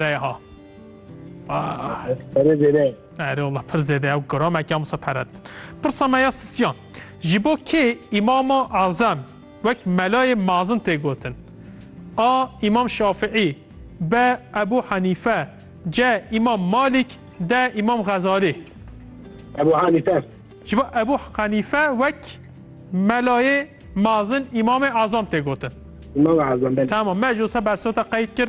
Reyha. Pere zêde. Erê Allah pir zêde ew giramekî amsa pere din. Pirsa me ya sisiyan. Ji bo kê Îmama Azem wek melayê mazin tê gotin? A. Îmam Şafiî B. Ebû Henîfe C. Îmam Malîk D. Îmam Xezalî Ebû Henîfe Ji bo Ebû Henîfe wek melayê mazin Îmamê Azam tê gotin. Îmam Azam belê. Tamam me ji wisa bersota qeyd kir.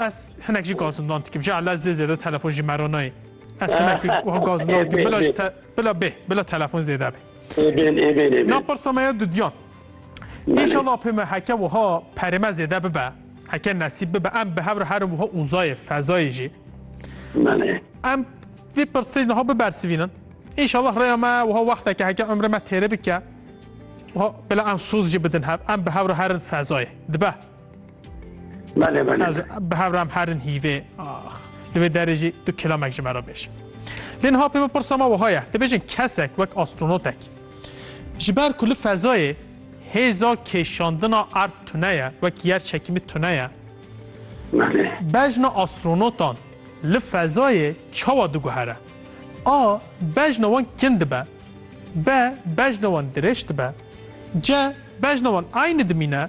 Ez hinek jî gazindan dikim. Ji ala zê zêde telefon jî meronayê. Ez hinek wiha gazindan dikim. Bila ji te bila bê, bila telefon zêde bê. Êbên êbên êbên. Na pirsa me ya dudiyan. İnşallah pê me heke wiha perême zêde bibe. Heke nesîb bibe. Em bi hev re herin wiha uzayê, fezayê jî. Em vê pirsê niha bibersivînin. İnşallah rêya me wiha wexteke heke ömrê me têrê bike. Bila em soz jî bidin hev. Em bi hev re herin fezayê. Dibe. Belê belê. Ez bi hevram herin hîvê. Ax. Li vê derê jî tu kilamek ji me re bêj. Lê niha pê min pirsa me wiha ye. Dibêjin kesek wek astronotek. Ji ber ku li fezayê hêza kêşandina erd tune ye, wek yer çekîmî tune ye. Belê. Bejna astronotan li fezayê çawa diguhere? A. Bejna wan kin dibe. B. Bejna wan dirêj dibe. C. Bejna wan aynî dimîne.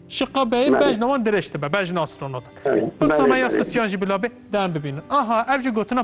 Şiqa beyê bejna wan dirêj dibe, bejna astronot. Bi sameya sisiyan jî bila bê, dem bibînin. Aha, ev jî gotina